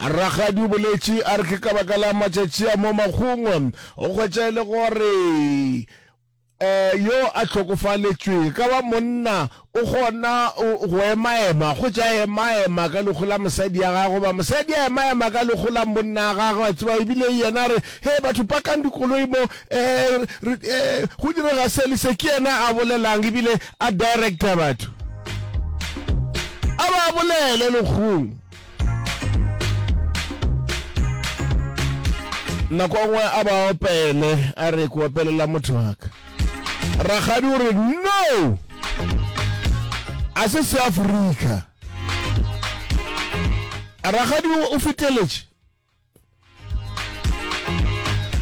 ragadi o boletše a re ke ka baka la matšatši a mo magongwe o kgwetša e le gore um yo a tlhokofaletšweng ka ba monna o kgona go emaema go ja emaema ka lekgo la mosadi ya gagwe ba mosadi a emaema ka lekgo la monna ya gagwe a tseba ebile yena re he batho pakang dikoloi mo um go direga se le se ke yena a bolelang ebile a director batho a ba bolele lekgong nako nngwe a ba opele a re ko opelela motho waka ragadi o re no a se se afrika ragadi o feteletše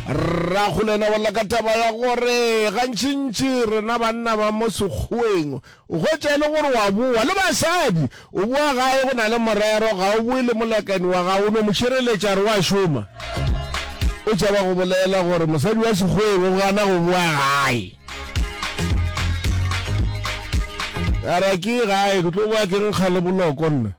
rragolena wa laka taba ya gore gantšintši rena banna ba mo sekgweng o hwetša e le gore wa boa le basadi o boa gae go na le morero ga o boe le molekani wa gago o no mo šireletša re wa šoma o tšaba go bolela gore mosadi wa sekgweng o gana go boa gae ara ke gae ke tlo boa ke nkga le boloko nna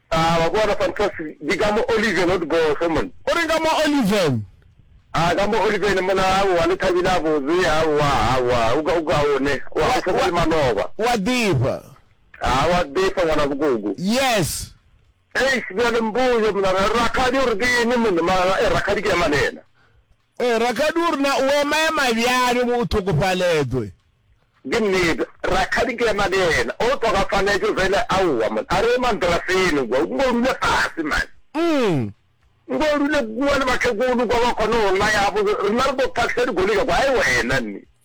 A ba bona Fantas di ka mo Oliven o di bofe monna. O reng ka mo Oliven? A ka mo Oliven monna aowa le Thabile a botse aowa aowa o ka o ka one wa go tshwana le maloba. Wa befa. A wa befa ngwana bokoko. Yes. Eish bjale mpoje monna rakgadi o re ke eng monna mara e rakgadi ke ya manena. Ee, rakgadi o re na o emaema bjang ge o tlhokofaletšwe? Ke nnete, rakgadi ke ema le yena o tlhokafaletšwe fela. Aowa monna, a re ema ntira feno kua, o nko dule fase mane. Umm. Nko o dule kua le batlhekolo kua ba kgone go naya gabotse, rena re tlo tlhagisa dikgole tša kua. Ai wena nni.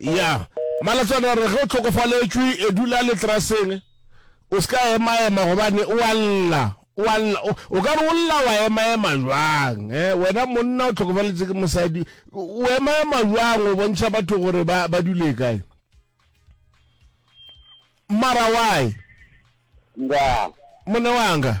ya malatswana re ge o tlhokofaletšwe e dula letraseng o se ka emaema gobane o a lla o a lla o- o ka re o lla wa emaema jwang eh, wena monna o tlhokofaletse ke mosadi o o emaema jwang o bontšha batho gore ba ba dule kae mara why nda mone wanga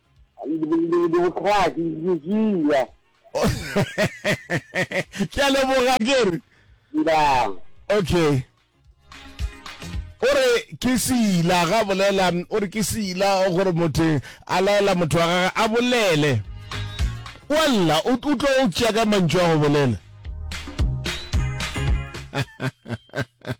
dibokrati dikila ke a leboga kere okay o re ke sila ga bolela o re ke sila gore motho a laela motho wa gage a bolele wa lla o tlo o tšea ka mantšu a go bolela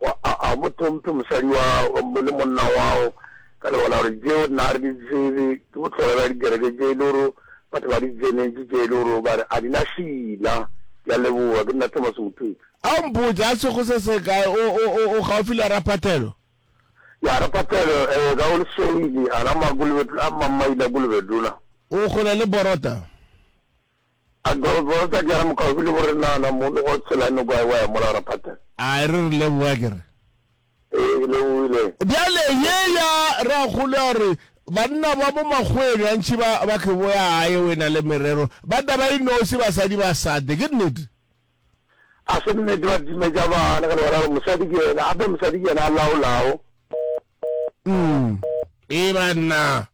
Wa, a, a o mo tlhomphe mosadi wa, le monna wao, ka lebaka la gore tšeo nna ga re di tsebe, ke bohlola bja dikereke tše e le gore batho ba di tsenetše, tše e le gore ba re a di na šila. Ke a leboga. Ke nna Thomas Mothupi. A o mpotše, a sego se se kae, o, o, o, o gaufi le Raphathelo? Ya, Raphathelo, ee, ka go Lesweli, a la Makulubetula, a Mamaila Kulubetula. O kgole le Borota? A Girls ba re sa diara mokgaofi le bore nana mo le go tshela no gwa wa ya mola ra phata. A e re re leboga ke re. Ee ke lebohile. Bjale ye ya ragolo ya gore banna ba mo makgoweng gantši ba ba ke boya gae o e na le merero ba taba e nosi basadi ba sate ke nnete? A se nnete ba timetša bana ka lebaka la gore mosadi ke yena gape mosadi ke yena a laolago. Ee banna.